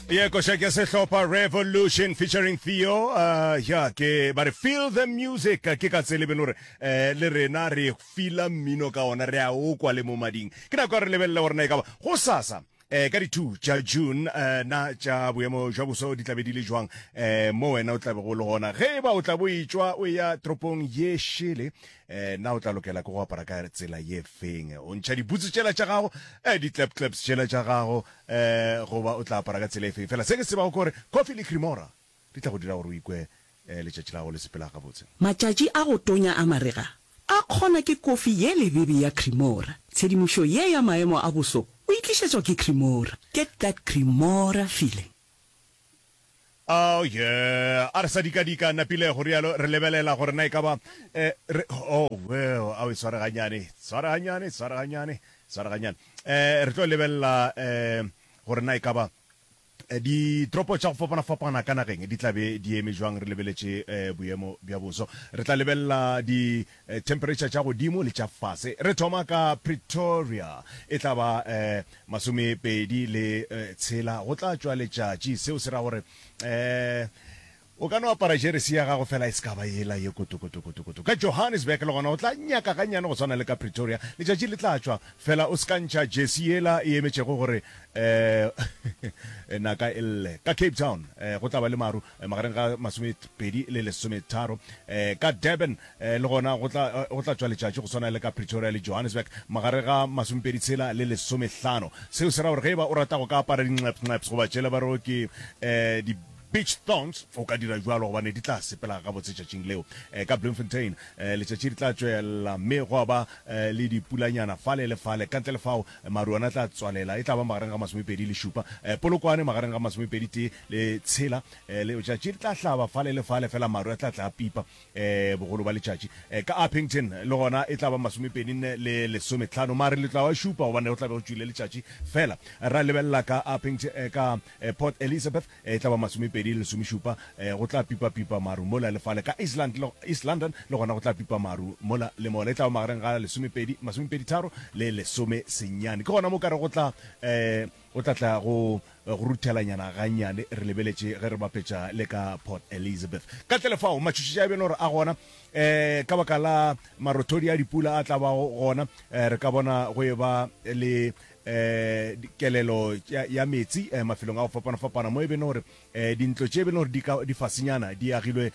ye koša ke sehlopha revolution featuring theo uh, ya ke ba re feel the music ke ka tsele beno gore eh, le rena re fila mmino ka ona re a o kwa le mo mading ke nako ya re lebelele gorena e ka ba go sasa eh ka di-two tša june eh na tša boemo jwa boso di tlabe di le jwang eh mo wena o tlabe go le gona ge e ba o tla bo etswa o ya toropong ye šele eh, na o tla lokela ke go apara ka tsela ye feng o ntšha dibutse tšela tša gago eh, di-clap claps tšela tša gago eh, goba o tla apara ka tsela e feng fela se ke tsebago kore coffee le cremora di tla go dira gore o ikwe eh, letšatši la gago le sepela gabotse Matšatši a go tonya a marega a kgona ke kofi ye lebebe ya Cremora. Tshedimošo ye ya maemo a boso o e tlišetšwa ke Cremora. Get that Cremora feeling. Oh, yeah. A re sa dika-dika, napile go rialo, re lebelela gore na e ka ba... Eh, re, oh, well, a o sware ganyane, sware ganyane, sware ganyane, sware ganyane. Eh, re tlo lebelela eh, gore na e ka ba eh, ditoropo tša go fapana-fapana ka nageng di tlabe di eme jwang re lebeletše eh, boemo bja boso re tla lebelela di Themperetšha tša godimo le tša fase. Re thoma ka Pretoria, e tla ba masomepedi le tshela, go tla tšwa letšatši, seo se ra gore o ka no apara jeresi ya gago fela e se ka ba yela ye kotokotokotokoto. Ka Johannesburg le gona go tla nyaka gannyane go swana le ka Pretoria, letšatši le tla tšwa fela o se ka ntšha jersey yela e emetšego gore naka e lle. Ka Cape Town go tla ba le maru, magareng ga masomepedi le lesometharo ka Durban, le gona go tla go tla tšwa letšatši go swana le ka Pretoria le Johannesburg magareng ga masomepedi tshela le lesomehlano. Seo se ra gore ge e ba o rata go ka apara dinxepxnxeps goba tšela ba re o ke di beach thongs o ka dira bjalo gobane di tla sepela gabotse tšatšing leo. Ka Bloemfontein letšatši le tla tšwela mme gwa ba le dipulanyana fale le fale, ka ntle le fao maru ona a tla tswalela e tla ba magareng ga masomepedi le šupa. Polokwane magareng ga masomepedi tee Le tshela, eh, le, letšatši le tla hlaba fale le fale, fela maru a tla tla a pipa, eh, bogolo bja letšatši. Eh, ka Upington, le gona e tla ba masomepedi nne le lesometlhano, mare le tla wa šupa, gobane go tla be go tšwile letšatši. Fela, ra lebelela ka Upington, eh, ka, eh, Port Elizabeth, eh, e tla ba masomepedi le lesomešupa, eh, go tla pipa pipa maru mola le fale. Ka East London, East London, le gona go tla pipa maru mola le mola, e tla ba magareng ga lesomepedi, masomepedi tharo le lesomesenyane. Ke gona mo ka re go tla, eh, O tla tla go go ruthelanyana gannyane, re lebeletše ge re bapetša le ka Port Elizabeth. Ka ntle le fao, matšhošetše a bjalo re a gona um ka baka la marothodi a dipula a tla bago gona. Um re ka bona go e ba le um kelelo ya meetse um mafelong a go fapana-fapana mo e beno gore Dintlo tše be le gore di ka di fasenyana, di agilwe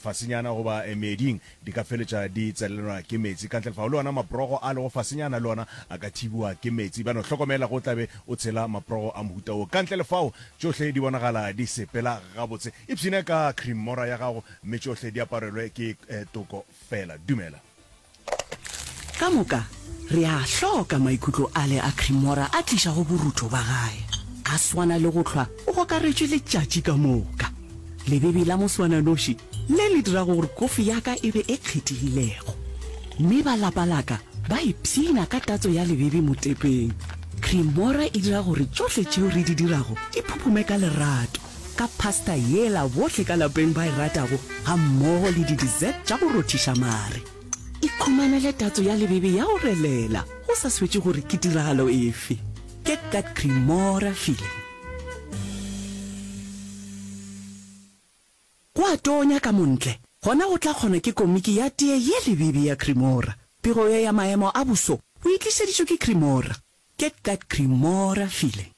fasenyana goba meeding, di ka feletša di tselelelwa ke meetse ka ntle lefao. Le ona maprogo a lego fasenyana le ona a ka thibiwa ke meetse. Bjalo hlokomela ge o tla be o tshela maprogo a mohuta wo ka ntle lefao. Tšohle di bonagala di sepela gabotse. Ipshine ka krimora ya gago mme tšohle di aparelwe ke toko feela. Dumela. Ka moka, re a a hloka maikutlo ale a Cremora a tlišago borutho ba gae. A swana le go hlwa o gokaretšwe letšatši ka moka. Lebebi la moswananoši le le dirago gore kofi ya ka e be e kgethegilego. Mme ba lapa la ka ba ipshina ka tatso ya lebebi motepeng. Cremora e dira gore tšohle tšeo re di dirago di phuphume ka lerato. ka pasta yela bohle ka lapeng ba e ratago gammogo le di-dessert tša go rothiša mare. Ikhumanele tatso ya lebebe ya go relela go sa swetše gore ke tiragalo efe. Get that Cremora feeling. Go a tonya ka montle, gona go tla kgona ke komiki ya tee ye lebebe ya Cremora. Pego ye ya maemo a boso o e tlišeditšwe ke Cremora. Get that Cremora feeling.